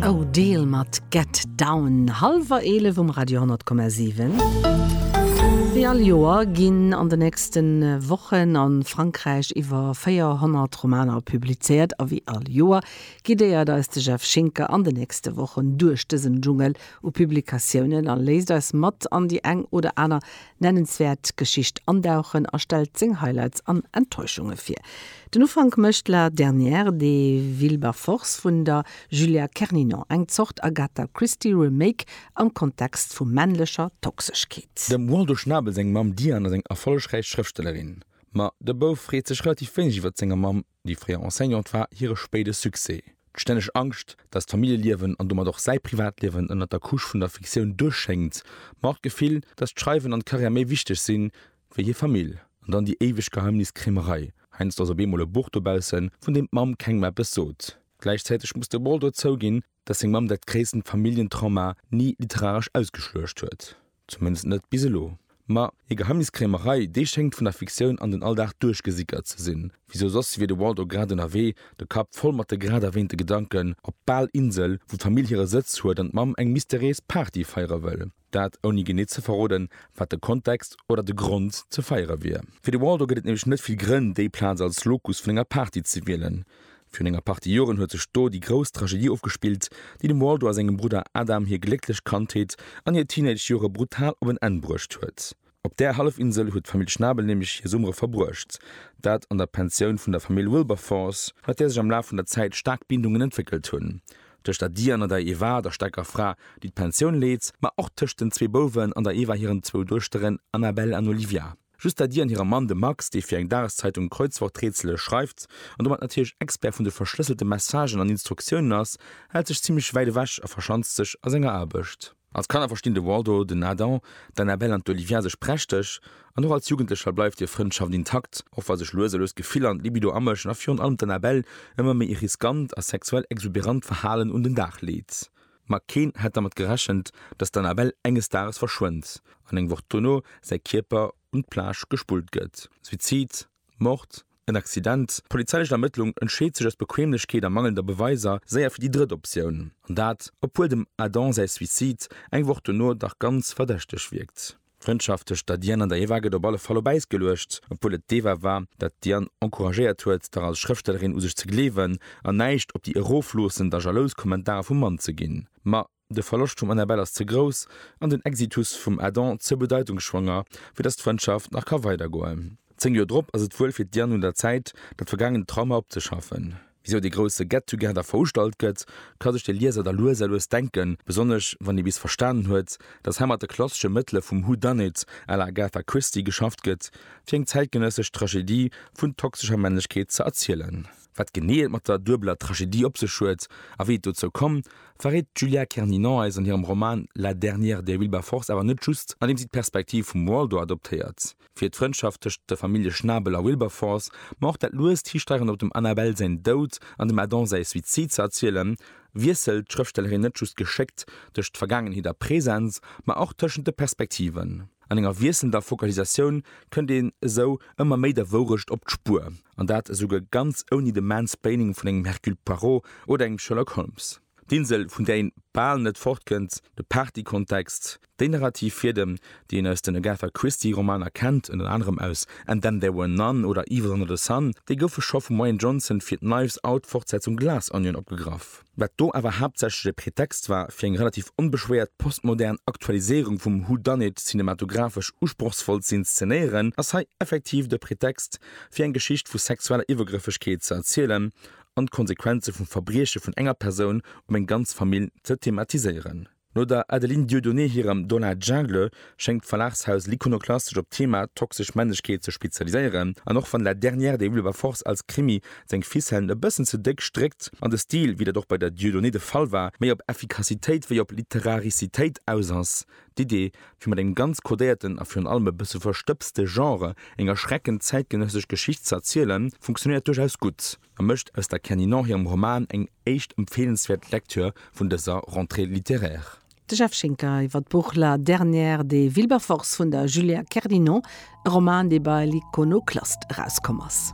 Odell mat Get Down, hallwer 11 um Radio 10,7. Wéi all Joer ginn an de nächste Wochen a Frankräich iwwer 400 Romaner publizéiert. A wéi all Joer guidéiert eis de Jeff Schinker an de nächste Wochen duerch dësen Dschungel u Publikatiounen a léisst eis mat an déi eng oder aner nennenswäert Geschicht andauchen a stellt seng Highlights an Enttäuschunge vir. Den Ufank mécht La dernière de Wilberforce vun der Julia Kerninon, eng Zort Agatha Christie Remake am Kontext vu männlecher Toxeschkeet. Dem Waldo Schnabel seng Mamm Diane ass eng erfollegräich Schrëftstellerin, ma de Bouf freet sech relativ wéineg iwwer senger Mamm. Déi fréier Enseignante war hire spéide Succès, d'stänneg Angscht, datt d'Familljeliewen an domat och säi Privatliewen ënnert der Couche vun der Fiktioun duerschéngt, ma och d'Gefill, datt d'Schreiwen an d'Karriär méi wichteg sinn, wéi hir Famill. An dann déi éiweg Geheimniskrämerei, heiansdo ass op eemol e Buch dobaussen, vun deem d'Mamm kengem eppes sot. Gläichzäiteg muss de Ball dozou ginn, dass seng Mamm dat gréissten Familljentrauma ni literaresch ausgeschluecht huet, zumindest net bis elo. Ma hir Geheimniskrämerei, déi schéngt vun der Fiktioun an den Alldag duerchgesickert ze sinn, wisou soss wier de Waldo grad ënnerwee, de Kapp voll mat de grad erwähnte Gedanken, op d'Balinsel, wou d'Famill hire Sëtz huet an d'Mamm eng mysteriéis Party feiere wëll. Dat ouni genee ze verroden, wat de Kontext oder de Grond ze feiere wier. Fir de Waldo gëtt et nämlech net vill Grënn, déi Plaz als Locus vun enger Party ze wielen. Virun enger Partie Joren huet sech do déi grouss Tragedie ofgespillt, déi dem Waldo a sengem Brudder Adam hir glécklech Kandheet an hir Teenage-Jore brutal op en Enn bruecht huet. Op där Hallefinsel huet d'Famill Schnabel nämlech hir Summere verbruecht, dat an der Pensioun vun der Famill Wilberforce, mat där sech am Laf vun der Zäit staark Bindungen entwéckelt hunn, tëscht der Diane an der Eva, der staarker Fra, déi d'Pensioun leet, ma och tëscht den zwee Bouwen an der Eva hiren zwou Duechteren Annabelle an Olivia. Just der Diane hirem Mann, dem Max, dee fir eng Dageszeitung Kreuzworträtsele schreift an domat natierlech Expert vun de verschlësselte Messagen an Instruktiounen ass, hält sech zimmlech wäit ewech a verschanzt sech a senger Aarbecht. Als Kanner verstinn de Waldo, den Adam, d'Annabelle an d'Olivia sech prächteg, an och als Jugendlecher bleift hir Frëndschaft intakt, och wa sech lues a lues d'Gefiller an d'Libido amëschen a virun allem d'Annabelle ëmmer méi e riskant a sexuell exuberant Verhalen un den Dag leet. Ma keen hätt dermat gerechent, dass d'Annabelle enges Dages verschwënnt an eng Woch dono säi Kierper un d'Plage gespullt gëtt. Suizid? Mord, en Accident, d'polizeilechen Ermëttlung entscheet sech aus Bequemlechkeet a mangelnder Beweiser séier fir déi drëtt Optioun, an dat obwuel dem Adam säi Suicide eng Woch dono dach ganz verdächteg wierkt. D'Frëndschaft tëscht der Diane an der Eva gëtt op alle Fall op Äis geluecht, obwuel et d'Eva war, dat d'Diane encouragéiert huet, dach als Schrëftstellerin u sech ze gleewen an näischt op déi erofloossend a jalous Kommentarer vum Mann ze ginn. Ma De Verloscht vum Annabelle ass ze grouss an den Exitus vum Adam ze bedeitungsschwanger, fir datt d'Frëndschaft nach ka weidergoen. Zéng Joer drop ass et wuel fir d'Diane un der Zäit, dat vergaangent Trauma opzeschaffen. Wisou dee grousse Get-Together veustallt gëtt, ka sech de Lieser da lues a lues denken, besonnesch wann ee bis verstanen huet, datt hei mat de klassesche Mëttele vum Who Done It à la Agatha Christie geschafft gëtt, fir eng zäitgenëssesch Tragedie vun toxescher Männlechkeet ze erzielen. Wat genee et mat der duebeler Tragedie op sech huet a wéi et dozou komm, verréit d'Julia Kerninon eis an hirem Roman La dernière de Wilberforce awer net just, andeem si d'Perspektiv vum Waldo adoptéiert fir d'Frëndschaft tëscht der Famillje Schnabel a Wilberforce, ma och dat luest Histeieren op dem Annabelle säin Doud an dem Adam säi Suizid ze erzielen, wiesselt d'Schrëftstellerin net just geschéckt tëscht Vergaangenheet a Präsens, ma och tëschent de Perspektiven. An enger wiesselnder Focalisatioun kënnt een esou ëmmer méi der Wourecht op d'Spuer, an dat esouguer ganz ouni de Mansplaining vun engem Hercule Poirot oder engem Sherlock Holmes. D'Insel, vun där een bal net fortkënnt, de Partykontext, déi narrativ Fiedem, déi een aus den Agatha Christie Romaner kennt, ënner anerem aus And Then There Were None oder Evil Under The Sun, déi goufe scho vum Rian Johnson fir d'Knives Out Fortsetzung Glass Onion opgegraff. wat do awer haaptsächlech e Pretext war fir eng relativ onbeschwéiert postmodern Aktualiséierung vum Who Done It cinematographesch usprochsvoll ze inszenéieren, ass hei effektiv de Pretext fir eng Geschicht vu sexueller Iwwergrëffegkeet ze erzielen an d'Konsequenze vum Verbrieche vun enger Persoun op eng ganz Famill ze thematiséieren. No der Adeline Dieudonné hirem Dans la Jungle schéngt d'Verlagshaus L'Iconoclaste sech op d'Thema toxesch Männlechkeet ze spezialiséieren. An och wann La dernière des Wilberforce als Krimi seng Ficellen e bëssen ze déck stréckt an de Stil, wéi dat och bei der Dieudonné de Fall war, méi op Effikassitéit wéi op Literaricitéit aus ass, d'Idee, fir mat engem ganz kodéierten a virun allem e bësse verstëbste Genre eng erschreckend zäitgenëssesch Geschicht ze erzielen, funktionéiert duerchaus gutt. a mécht aus der Kenny Nor hirem Roman eng éischt empfeelenswäert Lektür vun dëser Rentrée littéraire. De Jeff Schinker iwwer d'Buch La dernière des Wilberforce vun der Julia Kerdinon, e Roman, dee bei l'Iconoclaste erauskomm ass.